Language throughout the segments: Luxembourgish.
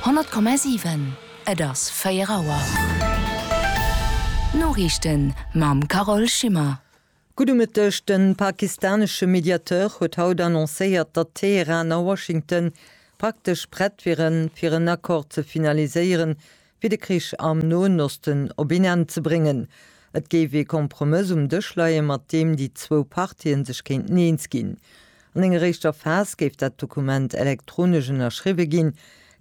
100,7 Et ass 4 Auer. D'Noriichten mam Carole Schimmer. Gudde Mëtteg. De pakistanesche Mediateur huet haut annoncéiert, datt Teheran a Washington praktesch prett wieren, fir en Accord ze finaliséieren, fir de Krich am Noen Osten op een Enn ze bréngen. Et géif ee Kompromëss um Dësch leien, mat deem déi zwou Partien sech kéinten eens ginn. An enger éischter Phas géif dat Dokument elektronesch ënnerschriwwe ginn.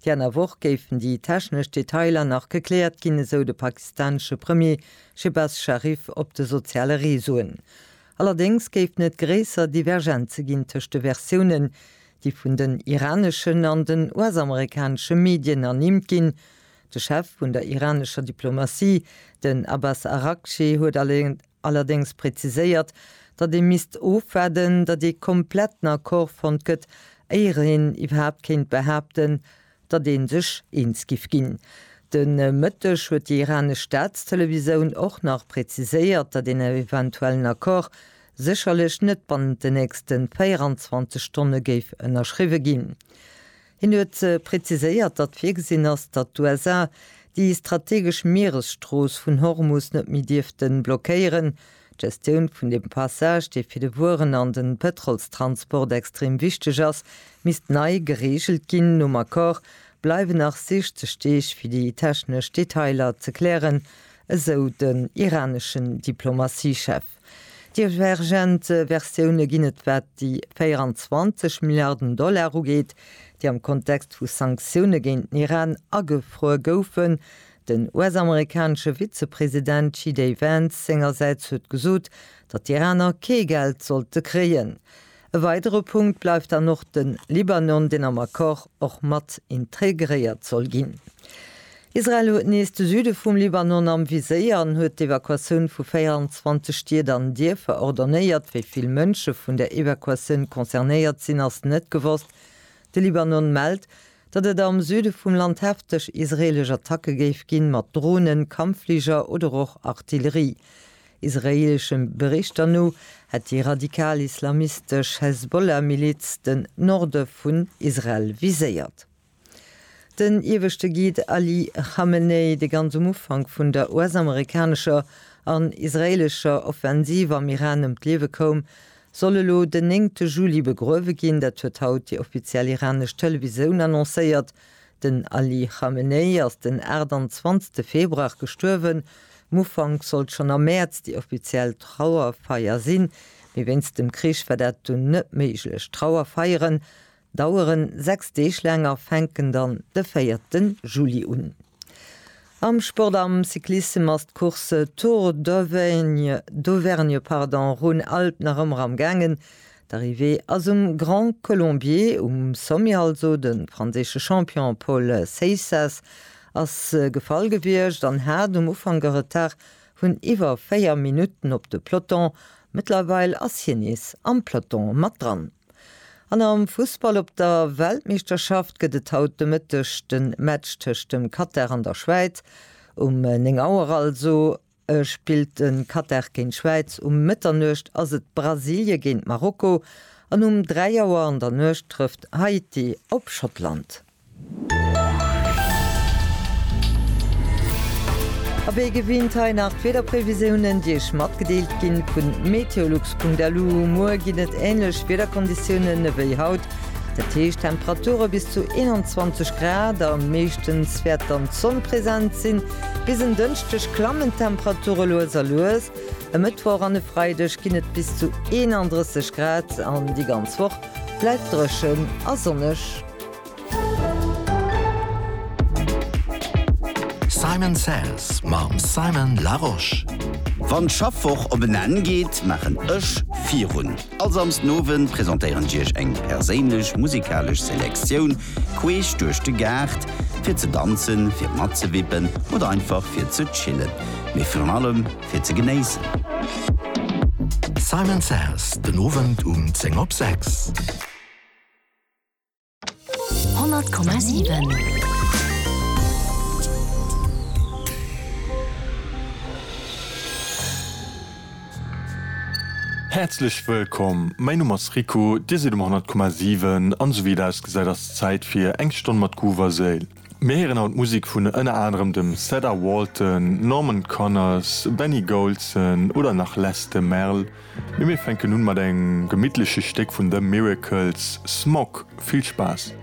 Déi aner Woch géifen déi technesch Detailer nach gekläert ginn, esou de pakistanesche Premier Shehbaz Sharif op de soziale Reseauen. Allerdéngs géifen et gréisser Divergenze ginn tëscht de Versiounen, déi vun den iraneschen an den US-amerikanesche Medien ernimmt ginn. De Chef vun der iranescher Diplomatie, den Abbas Araghchi, huet allerdéngs präziséiert, datt ee misst ofwaarden, datt ee kompletten Accord fonnt gëtt, éier een iwwerhaapt kéint behaapten, datt ee sech eens giff ginn. De Mëtteg huet déi iranesch Staatstelevisoun och nach präziséiert, datt een eventuellen Accord sécherlech net bannent den nächste 24 Stonne géif ënnerschriwwe ginn. Hien huet präziséiert, datt virgesinn ass, datt d'USA déi strategesch Mieresstrooss vun Hormus net méi dierfte blockéieren, D'Gestioun vun dem Passage, dee fir de Wueren an den Pëtrolstransport extrem wichteg ass, misst nei gereegelt ginn. Nom Accord bleiwen nach 60 Deeg fir déi technesch Detailer ze klären, esou den iraneschen Diplomatiechef. Divergent Versioune ginn et wat déi 24 Milliarden Dollar ugeet, déi am Kontext vu Sanktioune géint den Iran agefruer goufen. Den US-amerikanesche Vizepresident JD Vance sengersäits huet gesot, datt d'Iraner kee Geld sollte kréien. E weidere Punkt bleift dann och de Libanon, deen am Accord och mat integréiert soll ginn. Israel huet nees de Süde vum Libanon am Viséier an huet d'Evakuatioun vu 24 Stied an Dierfer ordonnéiert. Wéi vill Mënsche vun der Evakuatioun concernéiert sinn, ass net gewosst. De Libanon mellt, datt et am Süde vum Land hefteg israeelesch Attacke géif ginn, mat Dronen, Kampffliger oder och Artillerie. Israeelesche Berichter no hätt déi radikal-islamistesch Hezbollah-Miliz den Norde vun Israel viséiert. Den ieweschte Guide Ali Khamenei, dee ganz um Ufank vun der US-amerikanescher an israeelescher Offensiv am Iran ëm d'Liewe koum, soll elo den néngte Juli begruewe ginn. Dat huet haut déi offiziell iranesch Televisoun annoncéiert. Den Ali Khamenei ass den 28 Februar gestuerwen. Um Ufank sollt schonn am Mäerz déi offiziell Trauerfeier sinn, mee wéinst dem Krich war dat dunn net méiglech. D'Trauerfeieren daueren 6 Deeg laang a fänken dann de 4 Juli un. Am Sport, am Cyclissem ass d'Course Tour d'Auvergne d'Auvergne pardon Rhône-Alpes nach ëmmer am gaangen. D'Arrivée ass um Grand Colombier, um Sommier also. De franséische Champion Paul Seixas ass gefall gewiescht an hat um Ufank e Retard vun iwwer 4 Minutten op de Peloton. Mëttlerweil ass hien nees am Peloton mat dran. An am Fussball op der Weltmeeschterschaft gëtt et haut de Mëtteg de Match tëscht dem Katar an der Schwäiz. Um 9 Auer also spillt de Katar géint d'Schwäiz. Um Mëtternuecht ass et Brasilie géint Marokko an um 3 Auer an der Nuecht trëfft Haiti op Schottland. A wéi gewinnt hei nach d'Wiederprevisiounen, déi Iech matgedeelt gi vun meteolux.lu. Muer ginn et änlech Wiederkonditiounen ewéi haut, dat heescht Temperature bis zu 21 Grad a meeschtens wäert dann d'Sonn present sinn. Bis en Dënschdeg klammen d'Temperature lues a lues. E Mëttwoch an e Freideg ginn et bis zu 31 Grad an déi ganz Woch bleift dréchen a sonneg. Simon Says mam Simon Larosche. Wann d'Schaffwoch op en Enn geet, maachen ech virun. All Samsden Owend presentéieren ech iech eng perséinlech musikalesch Selektioun queesch duerch de Gaart, fir ze danzen, fir matzewippen oder einfach fir ze chillen, mee virun allem fir ze genéissen. Simon Says, den Owend um 10 op 6. Häerzlech wëllkomm, mäin Numm ass Rico, dir sidd um 100,7 an esou wéi et ausgesäit ass d'Zäit fir eng Stonn mat Groove a Séil. Mir héieren haut Musek vun ënner anerem dem Cedar Walton, Norman Connors, Benny Golson oder nach Les de Merle. Mee mir fänken un mat engem gemittleche Stéck vun The Miracles, Smog. Vill Spaass!